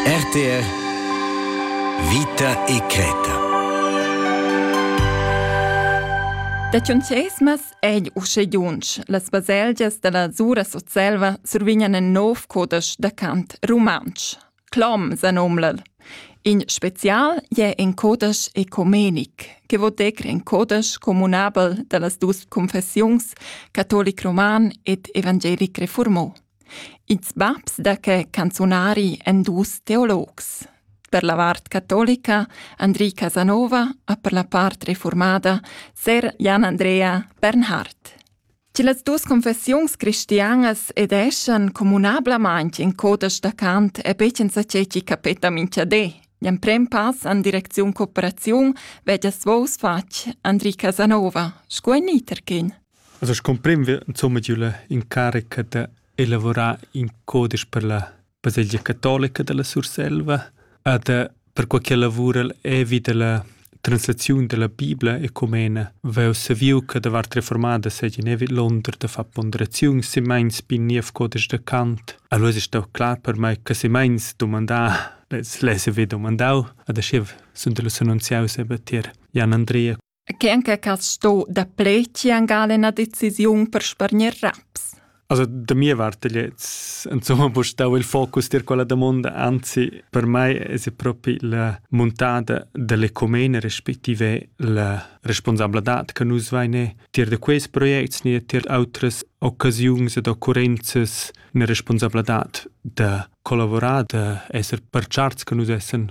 RTR Vita e creta Da Tschuncheismas egl usche giunsch. Las baselgias dalla Sura Sutselva survignan in nov codesch da cant rumantsch. Clom sa nomlal. In spezial è in codesch ecomenic, che vo decr in codesch comunabel dallas dus confessiuns catolic roman ed evangelic reformò. Ils babs da que canzunari èn dus teologs. Per la vart catolica Andri Casanova e per la part reformada ser Jan Andrea Bernhard. Che las dus confessiuns cristianas ed eschan communablamaint in coda staccant e becen sa ceci capeta minchadé. L'emprem pass an direcziun cooperaziun veggia svous fatg Andri Casanova, sco en Niterkin. Also scumprem wir insomma giu la incarica da elavurar in codisch per la baselgia catolica dalla Surselva e da perquai che lavura'l evi dalla translaziun dalla Bibla ecumena vegl saviu che davart reformada seigien evi l'onder da far ponderaziun semeins bi niev codisch da Kant. Allora è stau klar per mei che semeins domandar, les les evi domandau, ad aschiv sun delus annunziaus eben tier Jan Andrea Chen che has sto da pleci angal ina decisiun per spargner raps? Also da mia parte jetzt insomma bo stau il focus dir quella domanda anzi per mai es propi la muntada dell'ecomene respektive la responsabladad che nus vaine tier da quest projects ne tier autres occasiuns ed occurrenzas ne responsabladad da collavorar da esser per charts che nus essen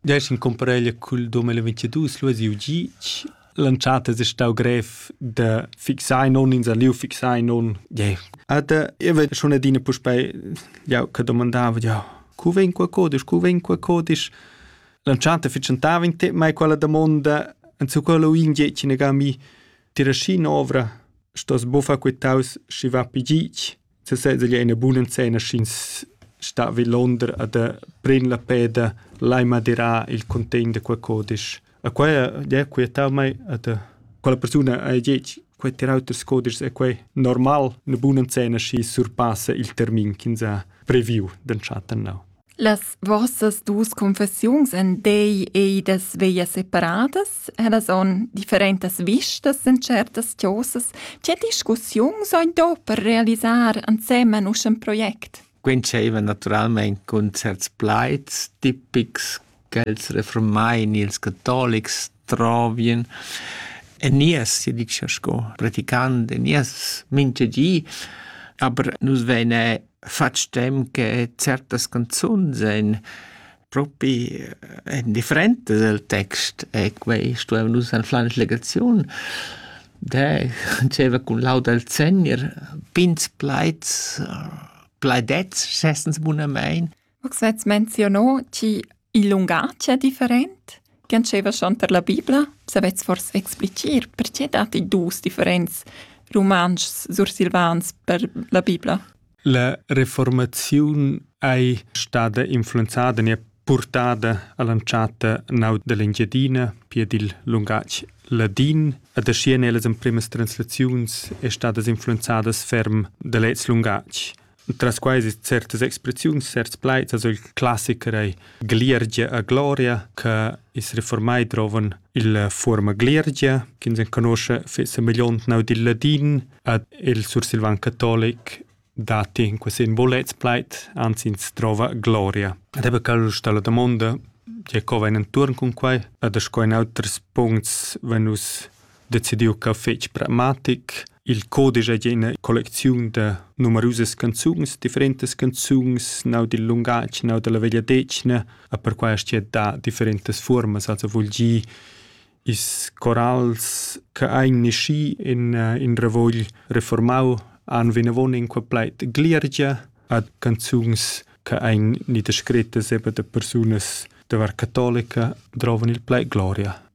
Dess in compareglia cul 2022 lu siu gitg. L'entschatta es stau grev da fixar non ins a liu fixar non. Yeah. Ed io vedo schon adina puspei jau che domandava ja cu vegn qua codisch, cu vegn qua codisch. L'entschatta fitschentava in te mai quella domanda en su quello in gitg negami tira schi novra stos bufa quitaus schi va pi gitg sesezza glià üna buna scena sch'ins sta vi Londra ad pren la peda lai madirà il contegn da quel codisch. E quai è quietavmai ad quella persuna ha detg quei terauters codischs è quei normal, una buna scena schi surpassa il termin ch'ins ha previu d'entschatten now. Las vossas dus confessiuns en dei ei da sveglias separadas ed son differentas vistas en certas chosas. Tge discussiuns hai do per realisar ensemen usch in project? Quei dscheva naturalmein cun certs plaids tipics ch'els refurmain ils catolics trovien en nies, sia dicia sco praticant en nies mincha di, aber nus veine fatg temps che certas canzuns ein propi en differentas el text e quei stuevan nus anflar in legaziun. De diceva cun laud al Segner, pins plaids, plaidets, schessens bunamein, Max vets menzionò chi il lungatg è different chi antscheva schon tar la Bibla. Savets fors explicir perche datti dus differents rumantschs sursilvans per la Bibla? La reformaziun ei stada influenzada e purtada all'entschatta nau dell'Engiadina pia dil lungatg ladin ed aschia nellas empremas translaziuns è stadas influenzadas ferm da lez lungatg. Tras quai es certas expressiuns, certs plaids, also il classiker ei Gliergia a gloria, che is reformai drovan il fuorma Gliergia, che ins conosce fece milliontnau dil ladin, ad il sursilvan catolic dati in questi bolets plait, anzi ins trova gloria. Ed ebbe cal sta la domanda, je co vain intorn cun quai, ad sco in auters puncts venus decidiu ch'el fetg pragmatic. Il codice è una collezione di numerose canzoni, differenti canzoni, nau dil lungatg, nau dalla vegliadetgna, e per questo è da differenti forme, also vuol dire is corals che ein nasci in, in ravogl reformau han vinavon in quel pleit gliergia ad canzuns che ein ni descrette sebe da persunas da var cattolica drovan il pleit gloria.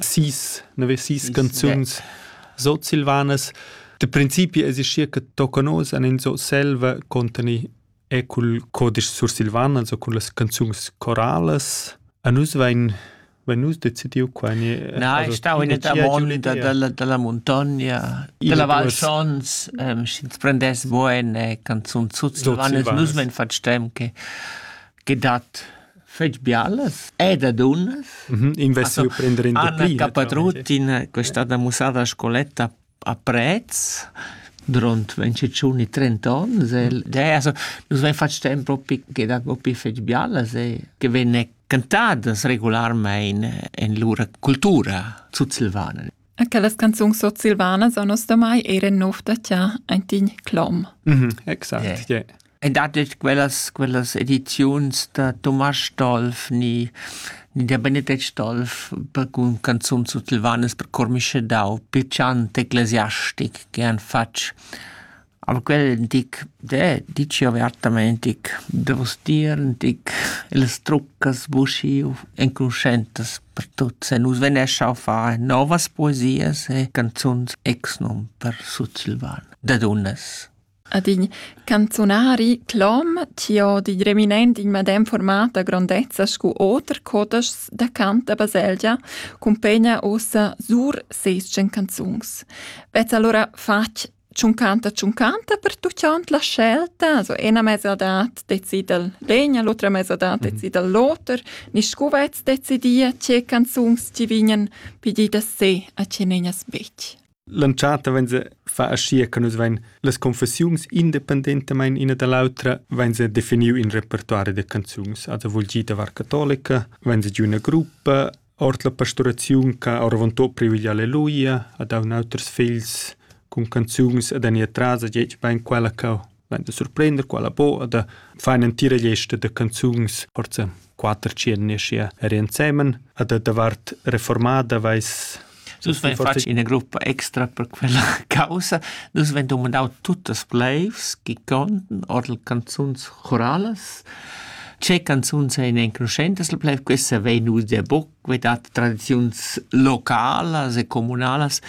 sis nevesis canzuns sutsilvanas da principi existia che tocanos an in so selva contani e cul codice sursilvan also cun las canzuns corales a nus vain vain nus decidiu qua na ich stau in der monda della della montagna della val schons sch'ins prendess bo eine canzun sutsilvan nus men fat stem che che dat fetg bialas ed a dunnas. Mm -hmm. Investi prender in Anna Capatruttin, che è stata mussata a scoletta a Prez, durant 25 30 onns, mm. e, also, nus vein fatg tempo propi che da propi fetg bialas e che venne cantadas regularmein en lura cultura sutsilvana. E quellas canzuns sursilvanas a nos damai eran nov da cha aintin clom. Mhm, exact. Yeah. Yeah. E datg quellas, quellas ediziuns da Thomas Dolf ni, ni der Benedict Dolf per con canzun sursilvanas per Cormische Dau, più chant ecclesiastic che han fatg Al quel dic: Deh, dici avertamaing dic: Dovust dir dic las truccas buschiu enconuschentas per tuots e nus vgnescha a far novas poesias e canzuns exnum per sutsilvan da dunnas. Ad in canzunari clom chi ho di reminent in medem format da grondezza scu oter codeschs da cant da baselgia cumpegna uossa sur seis tschen canzuns. Vezza alura fatg tschuncanta tschuncanta per tutgond la scelta so ena mesadad decidel l'egna l'otra mesadad mhm. decidel l'oter ni scuvets decidia tge canzuns ti vignen pidida se a ce negnas bec L'entschatta wenn se fa ascia che nus vein las confessiuns independentamain ina dall'autra wenn se definiu in repertoire de canzuns also vul gi da var cattolica wenn se giu una gruppa Ord la pasturaziun ch'ha oravontut previdiu alleluia ha dau in auters figls cun canzuns ed enir tras a gliez bein quella cheu vegn da surprender quella buca da fa in'entira gliesta da canzuns ord quater tschien aschia er ensemen ad davart reformada veis Dus vein fatg ina gruppa extra per quella caussa. Dus vein dumandau tuttas pleivs chi conten ord canzuns choralas. Ce canzuns ein enconuschentas la pleiv, questa vegn udia buc, vei dat tradiziuns localas e comunalas.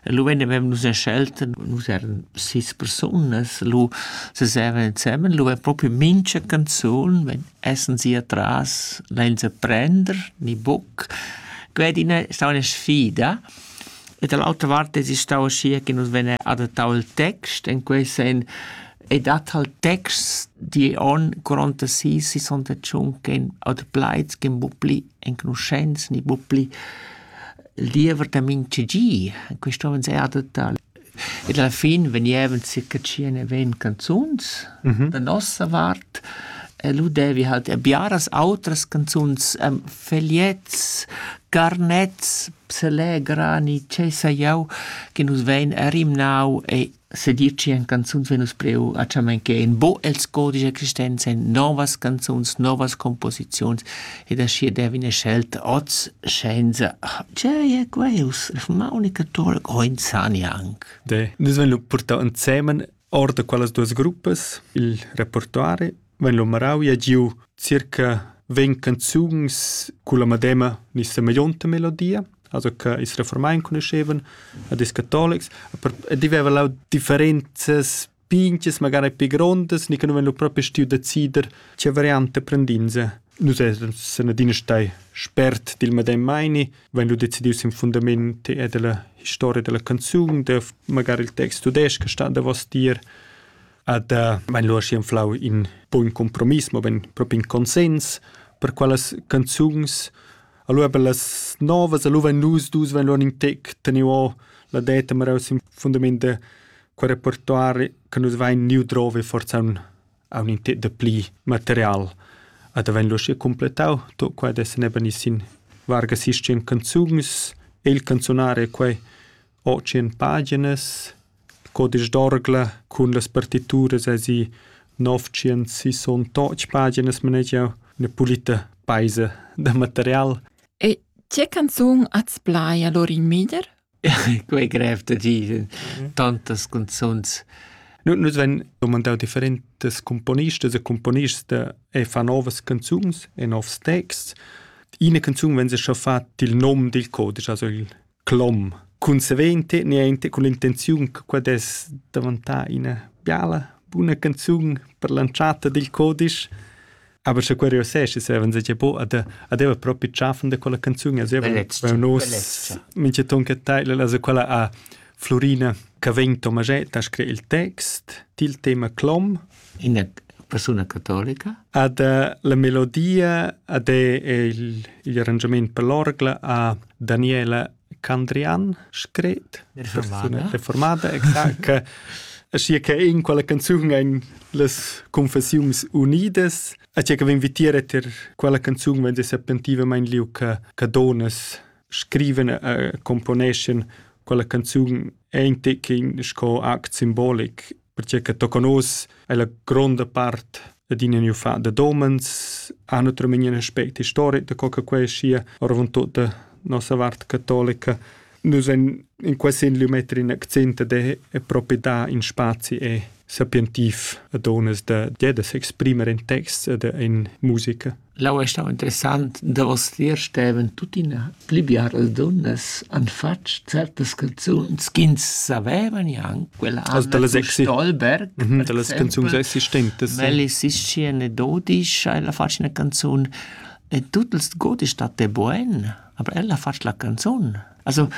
Lu vegn avem nus scelto, nus eran sis persunas, lu seseven ensemen, lu vegn propi mincha canzun vegn Essen si atras lenza prender ni buc. Quei ed ina stau ina sfida. E dall'autra vart es stau aschia che nus vein adattau il text. En quei senn ei dat halt texts digl onn 46-61 ch'ein ademplaids ch'ein buc pli enconuschents ni buc pli il diever da mintgagi. Quei stovan sei adattar. ed alla fin vegnevan circa tschient-ventg canzuns da nossa vart e lu devi halt er biaras autras canzuns, fegliets, carnets, pselè, grani, tgei sai jeu, che nus vein er rimnau e sedir tschien canzuns vegn nus priu a tschamenchein, bo els codici existenza, novas canzuns, novas composiziuns Ed aschia devi ina scelta oz senza tgei è quels? Ma unica tola Groinzani anc. De. Nus vein lu purtau ensemen ord da quellas duas gruppas il repertoire, vein lu marau e giu circa vegn canzuns culla medema ni semeglionta melodia, also che ils reformai enconuschevan, ad is catolics, e diveva lau differenzas pinches magari pi grondas ni che nu ven lur propi stiu decider che variante prendinse. Nus essan sen adina stai spert dil medem meini, wenn lu decidius in fundament e della historia della canzun, de magari il text tudesc sta davos dir, ad eh, wenn lu aschi anflau in buon compromiss, ma ben proprio in consens per quelles canzuns Allora per las novas, allora wenn nus dus, wenn lur in tec teniu la deta meraus in fundament de quei repertori che nus vein niu drovi forsa aunc, aunc in tet da pli material. Ad havein lu schi completau tot quei da seneben i sin varga sistem canzuns, il canzunare è quei ho tschien paginas, codisch d'orgla cun las partituras asi 968 paginas manegiau, üna pulita peisa da material. E tge canzun az plai allora in meglier? quei grev da dir tantas canzuns nus vein domandau differentas componistas e componists e fa novas canzuns e novs texts ina canzun vegn schon fat il nom dil codice also il clom consequente niente con l'intenziun che quella es daventà ina biala buna canzun per l'entrata dil codice Aber schon curiosesci seven se bo ad adeva propi tschaffen da quella canzun also nos minche ton che teil la quella a Florina Cavegn Tomaget ha scrit il text til tema clom ina persona cattolica ad la melodia ad è il, il arrangament per l'orgla a Daniela Candrian scret reformada reformada exact che sia che in quella canzun ein las confessiuns unidas a che che vin vitier et er quella canzun vende serpentivamente liu che che donas scriven e componeschen quella canzun ein te che sco act symbolic perche che tocca nus è la gronda part adina new fa da domens ha naturalmente un aspect historic da co che quei sia orvon tutta nossa vart cattolica nus en in quasi in lumetri in accent de è proprio da in spazi e sapientiv a donas da de da s'exprimer in text da in musica L'aua ei stau interessant. Davostier stevan tuttina pli biaras dunnas han fatg certas canzuns ch'ins saveva gnanc. Quella Anna Also dalla sexy. Stolberg, Mhm, dallas canzuns existentes. Melli Sistchi anedodisch ha ella fatg ina canzun e tut ils godis dat de buen, aber ella ha fatg la canzun. Also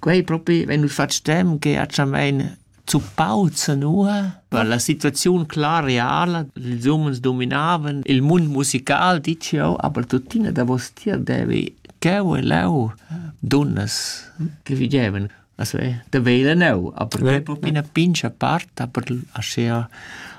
Quei propi vegn nus fatg stem che ha tschammein zuppau zanua per la situaziun clar reala. Ils umens dominavan il mund musical, dici jeu, aber tuttina davos tier devi cheu e leu dunnas che vigevan. Also, da vegl enneu, aber quei propi ina pincha part, aber aschia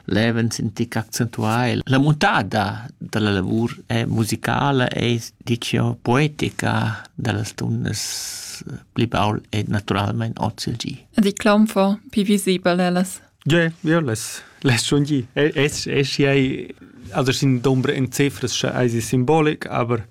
levent sentic accentuai. La muntada dalla lavur è musicala e dicio poetica dallas tundas pli baul e naturalmein oz il gi. Di claumfo pi visibel ellas. Ja, ja, les, les schon gi. Es, es, ei, also sin dombre in cifras sche ei simbolic, aber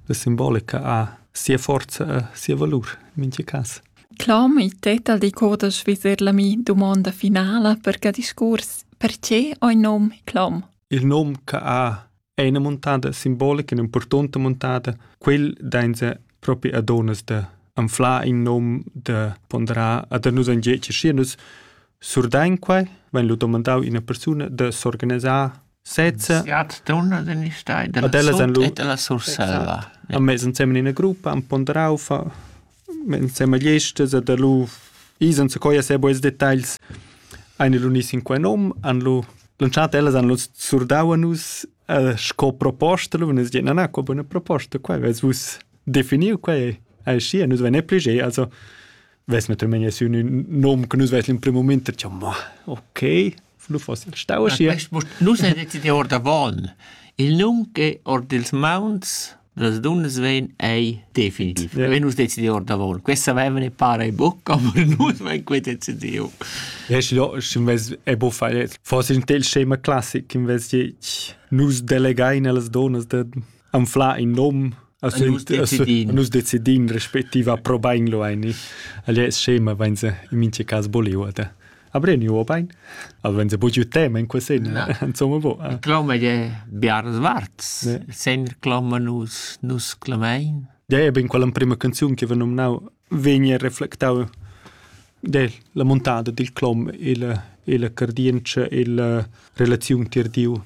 la simbolica ha sia forza, sia valur, in minche cas. Clom, il tet al decuorda svizzer la mi dumonda finala per ca discuors: perche ho il nom Clom? Il nom cha ha è ina muntada simbolica, ün'importanta muntada. Quel dainsa propi a duonnas da anflar in nom, da ponderar e da nus engadscher. Schi nus surdain quai, vain lu dumandau ina persuna da s'organisar sezza Siat dunna den ich dai della Ad ellas han lu- sut e della Surselva. Ja. han mess ensemen in gruppa, han ponderau fa ensemen gli estes e da lu isen se coia se boes details ein lu ni sin quei nom, han lu lanciat ellas han lu surdau a nus eh, sco proposta, lu nus dien na na, qua buona proposta, quei vess vus definiu quei ei schi, nus vein pli ge, also ves me tremegna su un nom che nus ves in primo moment, diciamo, ma okay, Nus ein decidì or da Val. Il num che or dils mauns las dunnas vein ei definitiv. Vein nus decidiu ord davon. Questa vevene para e bucca, aber nus vein quei decidiu. Yes, ja, invece è buffa forse in tel scema classic invece nus delegain alle donnas de anfla in nom nus decidin respettiva probain lo ein. Alle scema vein se in mince cas boliu Abreniu obein? Aven se bugiu tema in quesena. Insomma bo. Eh. Cloma de Biars Warts. Sen cloma nus nus clamein. Ja e ben quella prima canzun che va nominau vegni reflectau de la montada dil clom e la il cardience e la relaziun tir Dio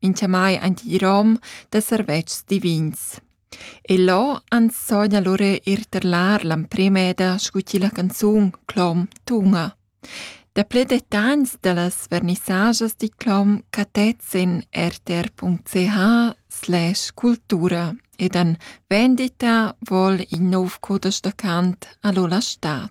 in chiamai aint il rom da servetschs divins. E là ans sogna lura ir terlar l'emprema eda scu chi la canzun Clom tuna. Daplè detagls da las vernissajas di Clom catets in rtr.ch slash cultura ed an vendita vol il nov codesch da cant a Lola Stadt.